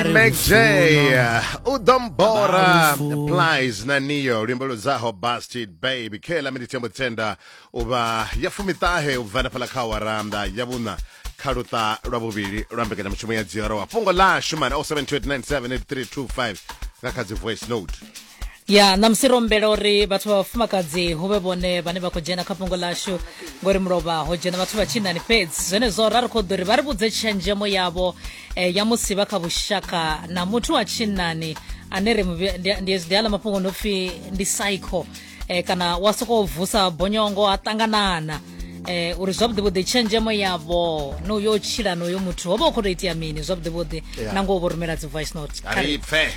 ndi mac j u ḓo mbora plies na niyo luimbo ludzaho busted baby khe ḽa miniti ya mutenda u vha ya fumiṱahe u bva nafhaḽa kha waranda ya vhuṋa kha luṱa lwa vhuvhili lwa mbekanyamushumo ya dziorowa fhungo ḽashu mani 072 978 325 nga kha dzi voice note ya ṋamusi ro humbela uri vhathu vha vhafumakadzi hu vhe vhone vhane vha khou dzhena kha fhungo ḽashu ngori mulovha ho dzhena vhathu vha tshinani fhedzi zwenezwo ra ri khou ḓo ri vha ri vhudze tshenzhemo yavho eh, ya musi vha kha vhushaka na muthu wa tshinani ane ri ndi aḽa mafhungo no pfi ndi psycho eh, kana wa sokou vusa bonyongo a ṱanganana eh uri zwavhuḓi vhuḓi tshenzhemo yavho no yo tshila no yo muthu ho vha u khou tou itea mini zwavhuḓi vhuḓi na ngo vho rumela dzi voice note kha ri pfe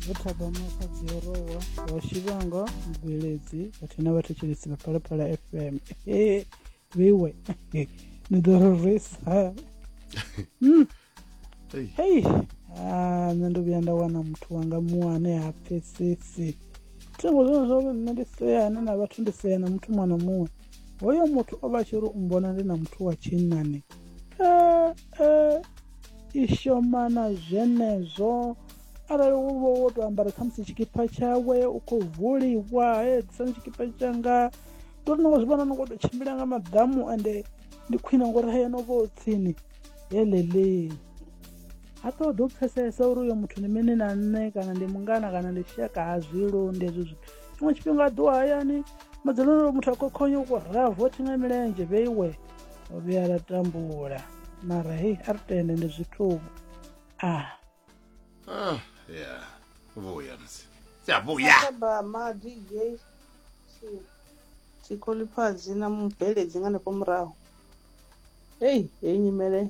vho thaba mafadzi ya rowa wa shivhanga mubveledzi vhathu na vhathetshelesi vha phalaphala fm e veiwe ni ḓo rorisa hmm. hei ah, nṋe ndo vhuya nda wana muthu wanga muṅwe ane ha pfesesi thingo zwone zwa uri nṋe ndi seane na vhathu ndi sea na muthu muṅwe na muṅwe hoyo muthu o vha tshi ri u mbona ndi na muthu wa tshinnani eh, eh. i shoma na zwenezwo arali wo vha wo tou ambara khamusi tshikipa tshawe u khou vuliwa hedzisani tshikipa tshanga ndi uri nongo zwi vhona nongo tou tshimbila nga maḓamu ende ndi khwine ngori haya no vha o tsini helele ha ṱoḓa u pfesesa uri uyo muthu ndi mini na nṋe kana ndi mungana kana ndi shaka ha zwi londi hezwo zwithu tshiṅwe tshifhinga a ḓiwa hayani madzuloni muthu a khokhonya u khou raha vothi nga milenzhe vheiwe ro vhuya ra tambula mara hei a ri tende ndi zwithuvhu a ah ya vhuya musi siyavhuya tshikoliphazi na mubveledzi nga hanefho murahu heyi heyi nyimele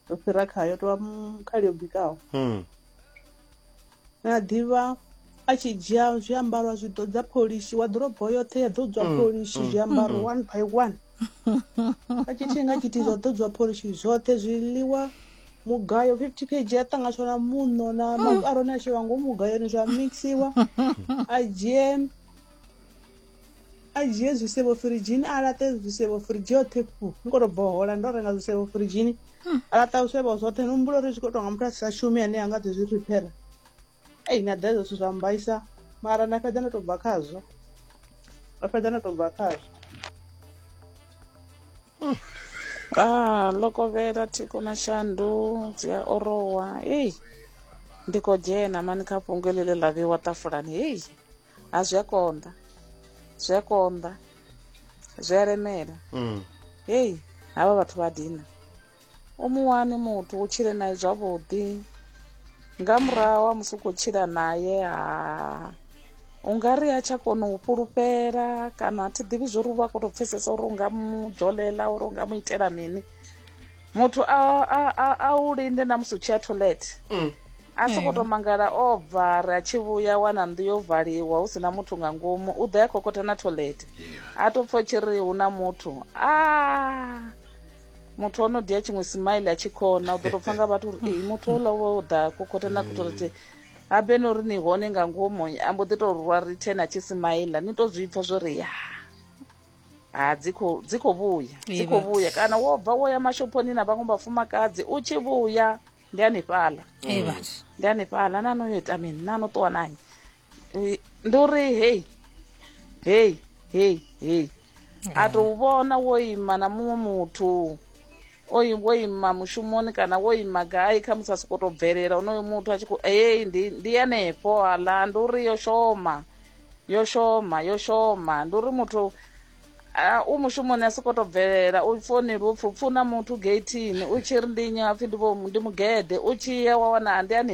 yo fhira khayo tovha khali yo bikaho hmm. na ḓivha a tshi dzhia zwiambaro zwi ḓo dza pholishi wa ḓorobo yoṱhe ya ḓo dzwa hmm. pholishi hmm. zwiambaro one by one a tshi thinga tshithihi zwa ḓo dzwa pholishi zwoṱhe zwiḽiwa mugayo 50 kg a ṱanganyiswa na muṋo na mm. makaroni a shela ngomu mugayoni zwa mixiwa a dzhie a dzhie zwisevho firidzhini a laṱe zwisevho firidzhi yoṱhe fu ni khou tou bohola ndo renga zwisevho firidzhini hmm. a laṱa zwisevho zwoṱhe ni humbula uri zwi khou tonga muthu a si sa shumi ane a nga ḓi zwi riphera ei na ḓa hezwo zwithu zwa mbaisa mara nda fhedza ndo tou bva khazwo nda fhedza ndo tou bva khazwo hmm. a ah, lokovhela thiko na shandu dzi a orowa ei ndi khou dzhena mani kha fhungo ḽi ḽe ḽa vheiwa ṱafulani hei ha zwi a konḓa zwi a konḓa zwi a lemela mm. heyi havha vhathu vha dina u mu wani muthu u tshile naye zwavhuḓi nga murahu wa musi u khou tshila naye ha u nga ri a tsha kona u fhulufhela kana a thi ḓivhi zwo ri u vha khou tou pfhesesa uri u nga mu dzolela uri u nga mu itela mini muthu a, a, a, a u linde na musi u tshi ya toilet Mm. a soko to mangala o bva ri a tshi vhuya wana nnḓu yo valiwa hu si na muthu nga ngomu u ḓo ya khokotha na toilet a to pfa u tshi ri hu na muthu a muthu o no dia tshiṅwe smile a tshi khona u ḓo to pfa nga vhathu uri "Ee, muthu ola wo ḓa khokotha na toilet ha be no ri ni hone nga ngomu a mbo ḓi to rwa return a tshi smile ni to zwi pfa zwo ri ya ha dzi khou dzi khou vhuya dzi Ee, khou vhathu. vhuya kana wo bva wo ya mashophoni na vhaṅwe vhafumakadzi u tshi vhuya ndi hanefhaḽa ee vhathu ndi hanefhaḽa na no yo ita mini na no ṱuwa nanyi Eh, ndi uri hei hei hei hei a tou vhona wo ima na muṅwe muthu o i- wo ima mushumoni kana wo ima gai kha musi a sokou tou bvelela onoyo muthu a tshi khou ei ndi ndi hanefho aḽa ndi uri yo shoma yo shoma yo shoma ndi uri muthu ah, u mushumoni a soko to bvelela u foneli upfi upfuna muthu geithini u tshi ri ndi nnyi apfi ndi vho- ndi mugede u tshi ya wa wana ndi ani